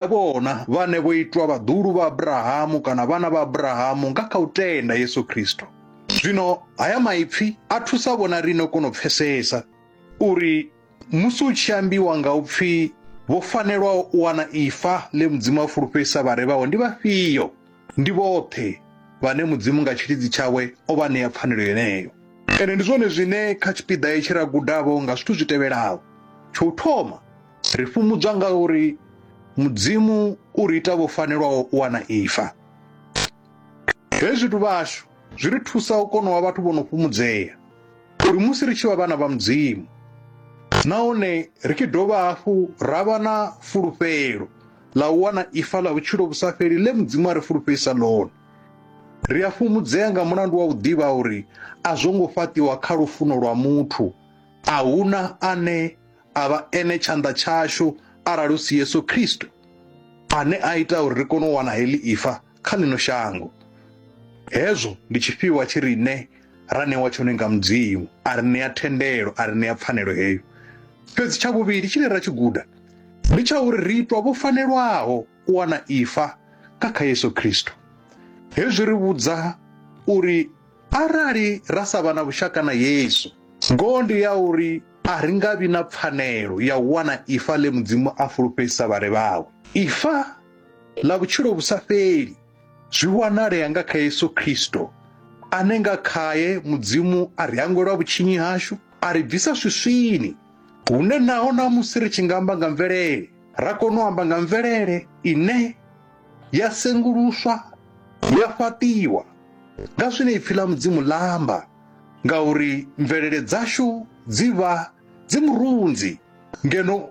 Vha vhona, vhane vho itwa vhaḓuhulu vha Abrahamu kana vhana vha Abrahamu nga kha u tenda Yesu Kristo. Zwino haya maipfi a thusa vhona riṋe u kona u pfesesa uri musi u tshi ambiwa nga u pfi vho fanelwaho u wana ifa ḽe Mudzimu a fulufhedzisa vhare vhawe ndi vhafhio. Ndi vhoṱhe vhane Mudzimu nga tshilidzi tshawe o vha ṋea pfanelo yeneyo. Ende ndi zwone zwine kha tshipiḓa hetshi ra gudavho nga zwithu zwi tevhelaho. Tsho u thoma, Ri fhumudzwa nga uri Mudzimu u ri ita vho fanelwaho u wana ifa. Hezwi zwithu vhashu zwi ri thusa u kona u vha vhathu vho no fhumudzea uri musi ri tshi vha vhana vha Mudzimu nahone ri tshi dovha hafhu ra vha na fulufhelo ḽa u wana ifa ḽa vhutshilo vhu sa fheli ḽe Mudzimu a ri fulufhedzisa ḽone. Ri a fhumudzea nga mulandu wa u ḓivha uri a zwo ngo fhaṱiwa kha lufuno lwa muthu, a huna ane a vha ene tshanḓa tshashu arali hu si Yesu Kristo ane a ita uri ri kone u wana heḽi ifa kha ḽino shango. Hezwo ndi tshifhiwa tshi riṋe ra ṋewa tshone nga Mudzimu, a ri ṋea thendelo, a ri ṋea pfanelo heyo. Fhedzi tsha vhuvhili tshine ra tshi guda ndi tsha uri ri itwa vho fanelwaho u wana ifa nga kha Yesu Kristo. Hezwi ri vhudza uri arali ra sa vha na vhushaka na Yesu, ngoho ndi ya uri A ri nga vhi na pfanelo ya u wana ifa ḽe Mudzimu a fulufhedzisa vhare vhawe. Ifa ḽa vhutshilo vhu sa fheli zwi wanalea nga kha Yesu Kristo, ane nga khae Mudzimu a ri hangwelwa vhutshinyi hashu, a ri bvisa swiswini, hune naho ṋamusi ri tshi nga amba nga mvelele, ra kona u amba nga mvelele ine ya senguluswa ya fhaṱiwa nga zwine ipfi ḽa Mudzimu ḽa amba. ngauri mvelele dzashu dzi vha dzi murunzi ngeno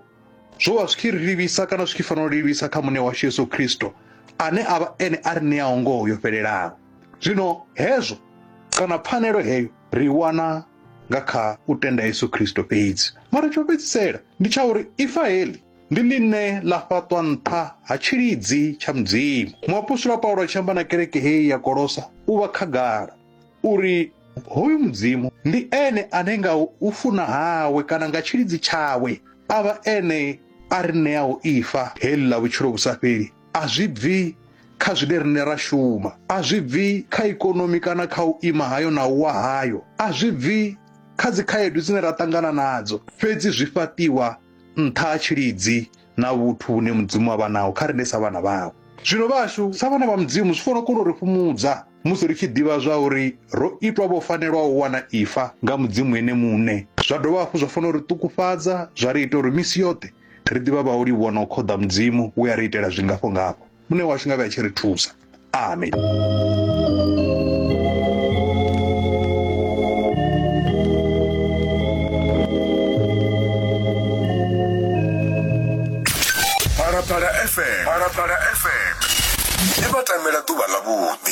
zwo vha zwi tshi ri livhisa kana zwi tshi fanela u livhisa kha muṋe washu yesu khristo ane a vha ene a ri ṋeaho ngoho yo fhelelaho zwino hezwo kana pfanelo heyo ri i wana nga kha u tenda yesu khristo fhedzi mara tsho fhedzisela ndi tsha uri ifa heḽi ndi ḽine ḽa fhaṱwa nṱha ha tshilidzi tsha mudzimu muapostola paulo a tshi amba na kereke heyi ya kolosa u vha khagala uri hoyu mudzimu ndi ene ane nga u funa hawe kana nga tshilidzi tshawe a vha ene a ri ṋeaho ifa heḽi ḽa vhutshilo vhu sa fheli a zwi bvi kha zwine riṋe ra shuma a zwi bvi kha ikonomi kana kha u ima hayo na u wa hayo a zwi bvi kha dzikhaedu dzine ra ṱangana nadzo fhedzi zwi fhaṱiwa nṱha ha tshilidzi na vhuthu vhune mudzimu avha naho kha rine sa vhana vawe zwino vhashu sa vhana vha mudzimu zwi fanela kona u ri fhumudza musi ri tshi ḓivha zwa uri ro itwa vho fanelwaho u wana ifa nga mudzimu ene muṋe zwa dovha hafhu zwa fanela uri ṱukufhadza zwa ri ita uri misi yoṱhe ri ḓivha vha u livhuwa na u khoḓa mudzimu we a ri itela zwingafho ngafho Muṋe washu nga vhe a tshi ri thusa. Amen. Phalaphala FM. Phalaphala FM. Ndi vha tamela ḓuvha ḽa vhuḓi.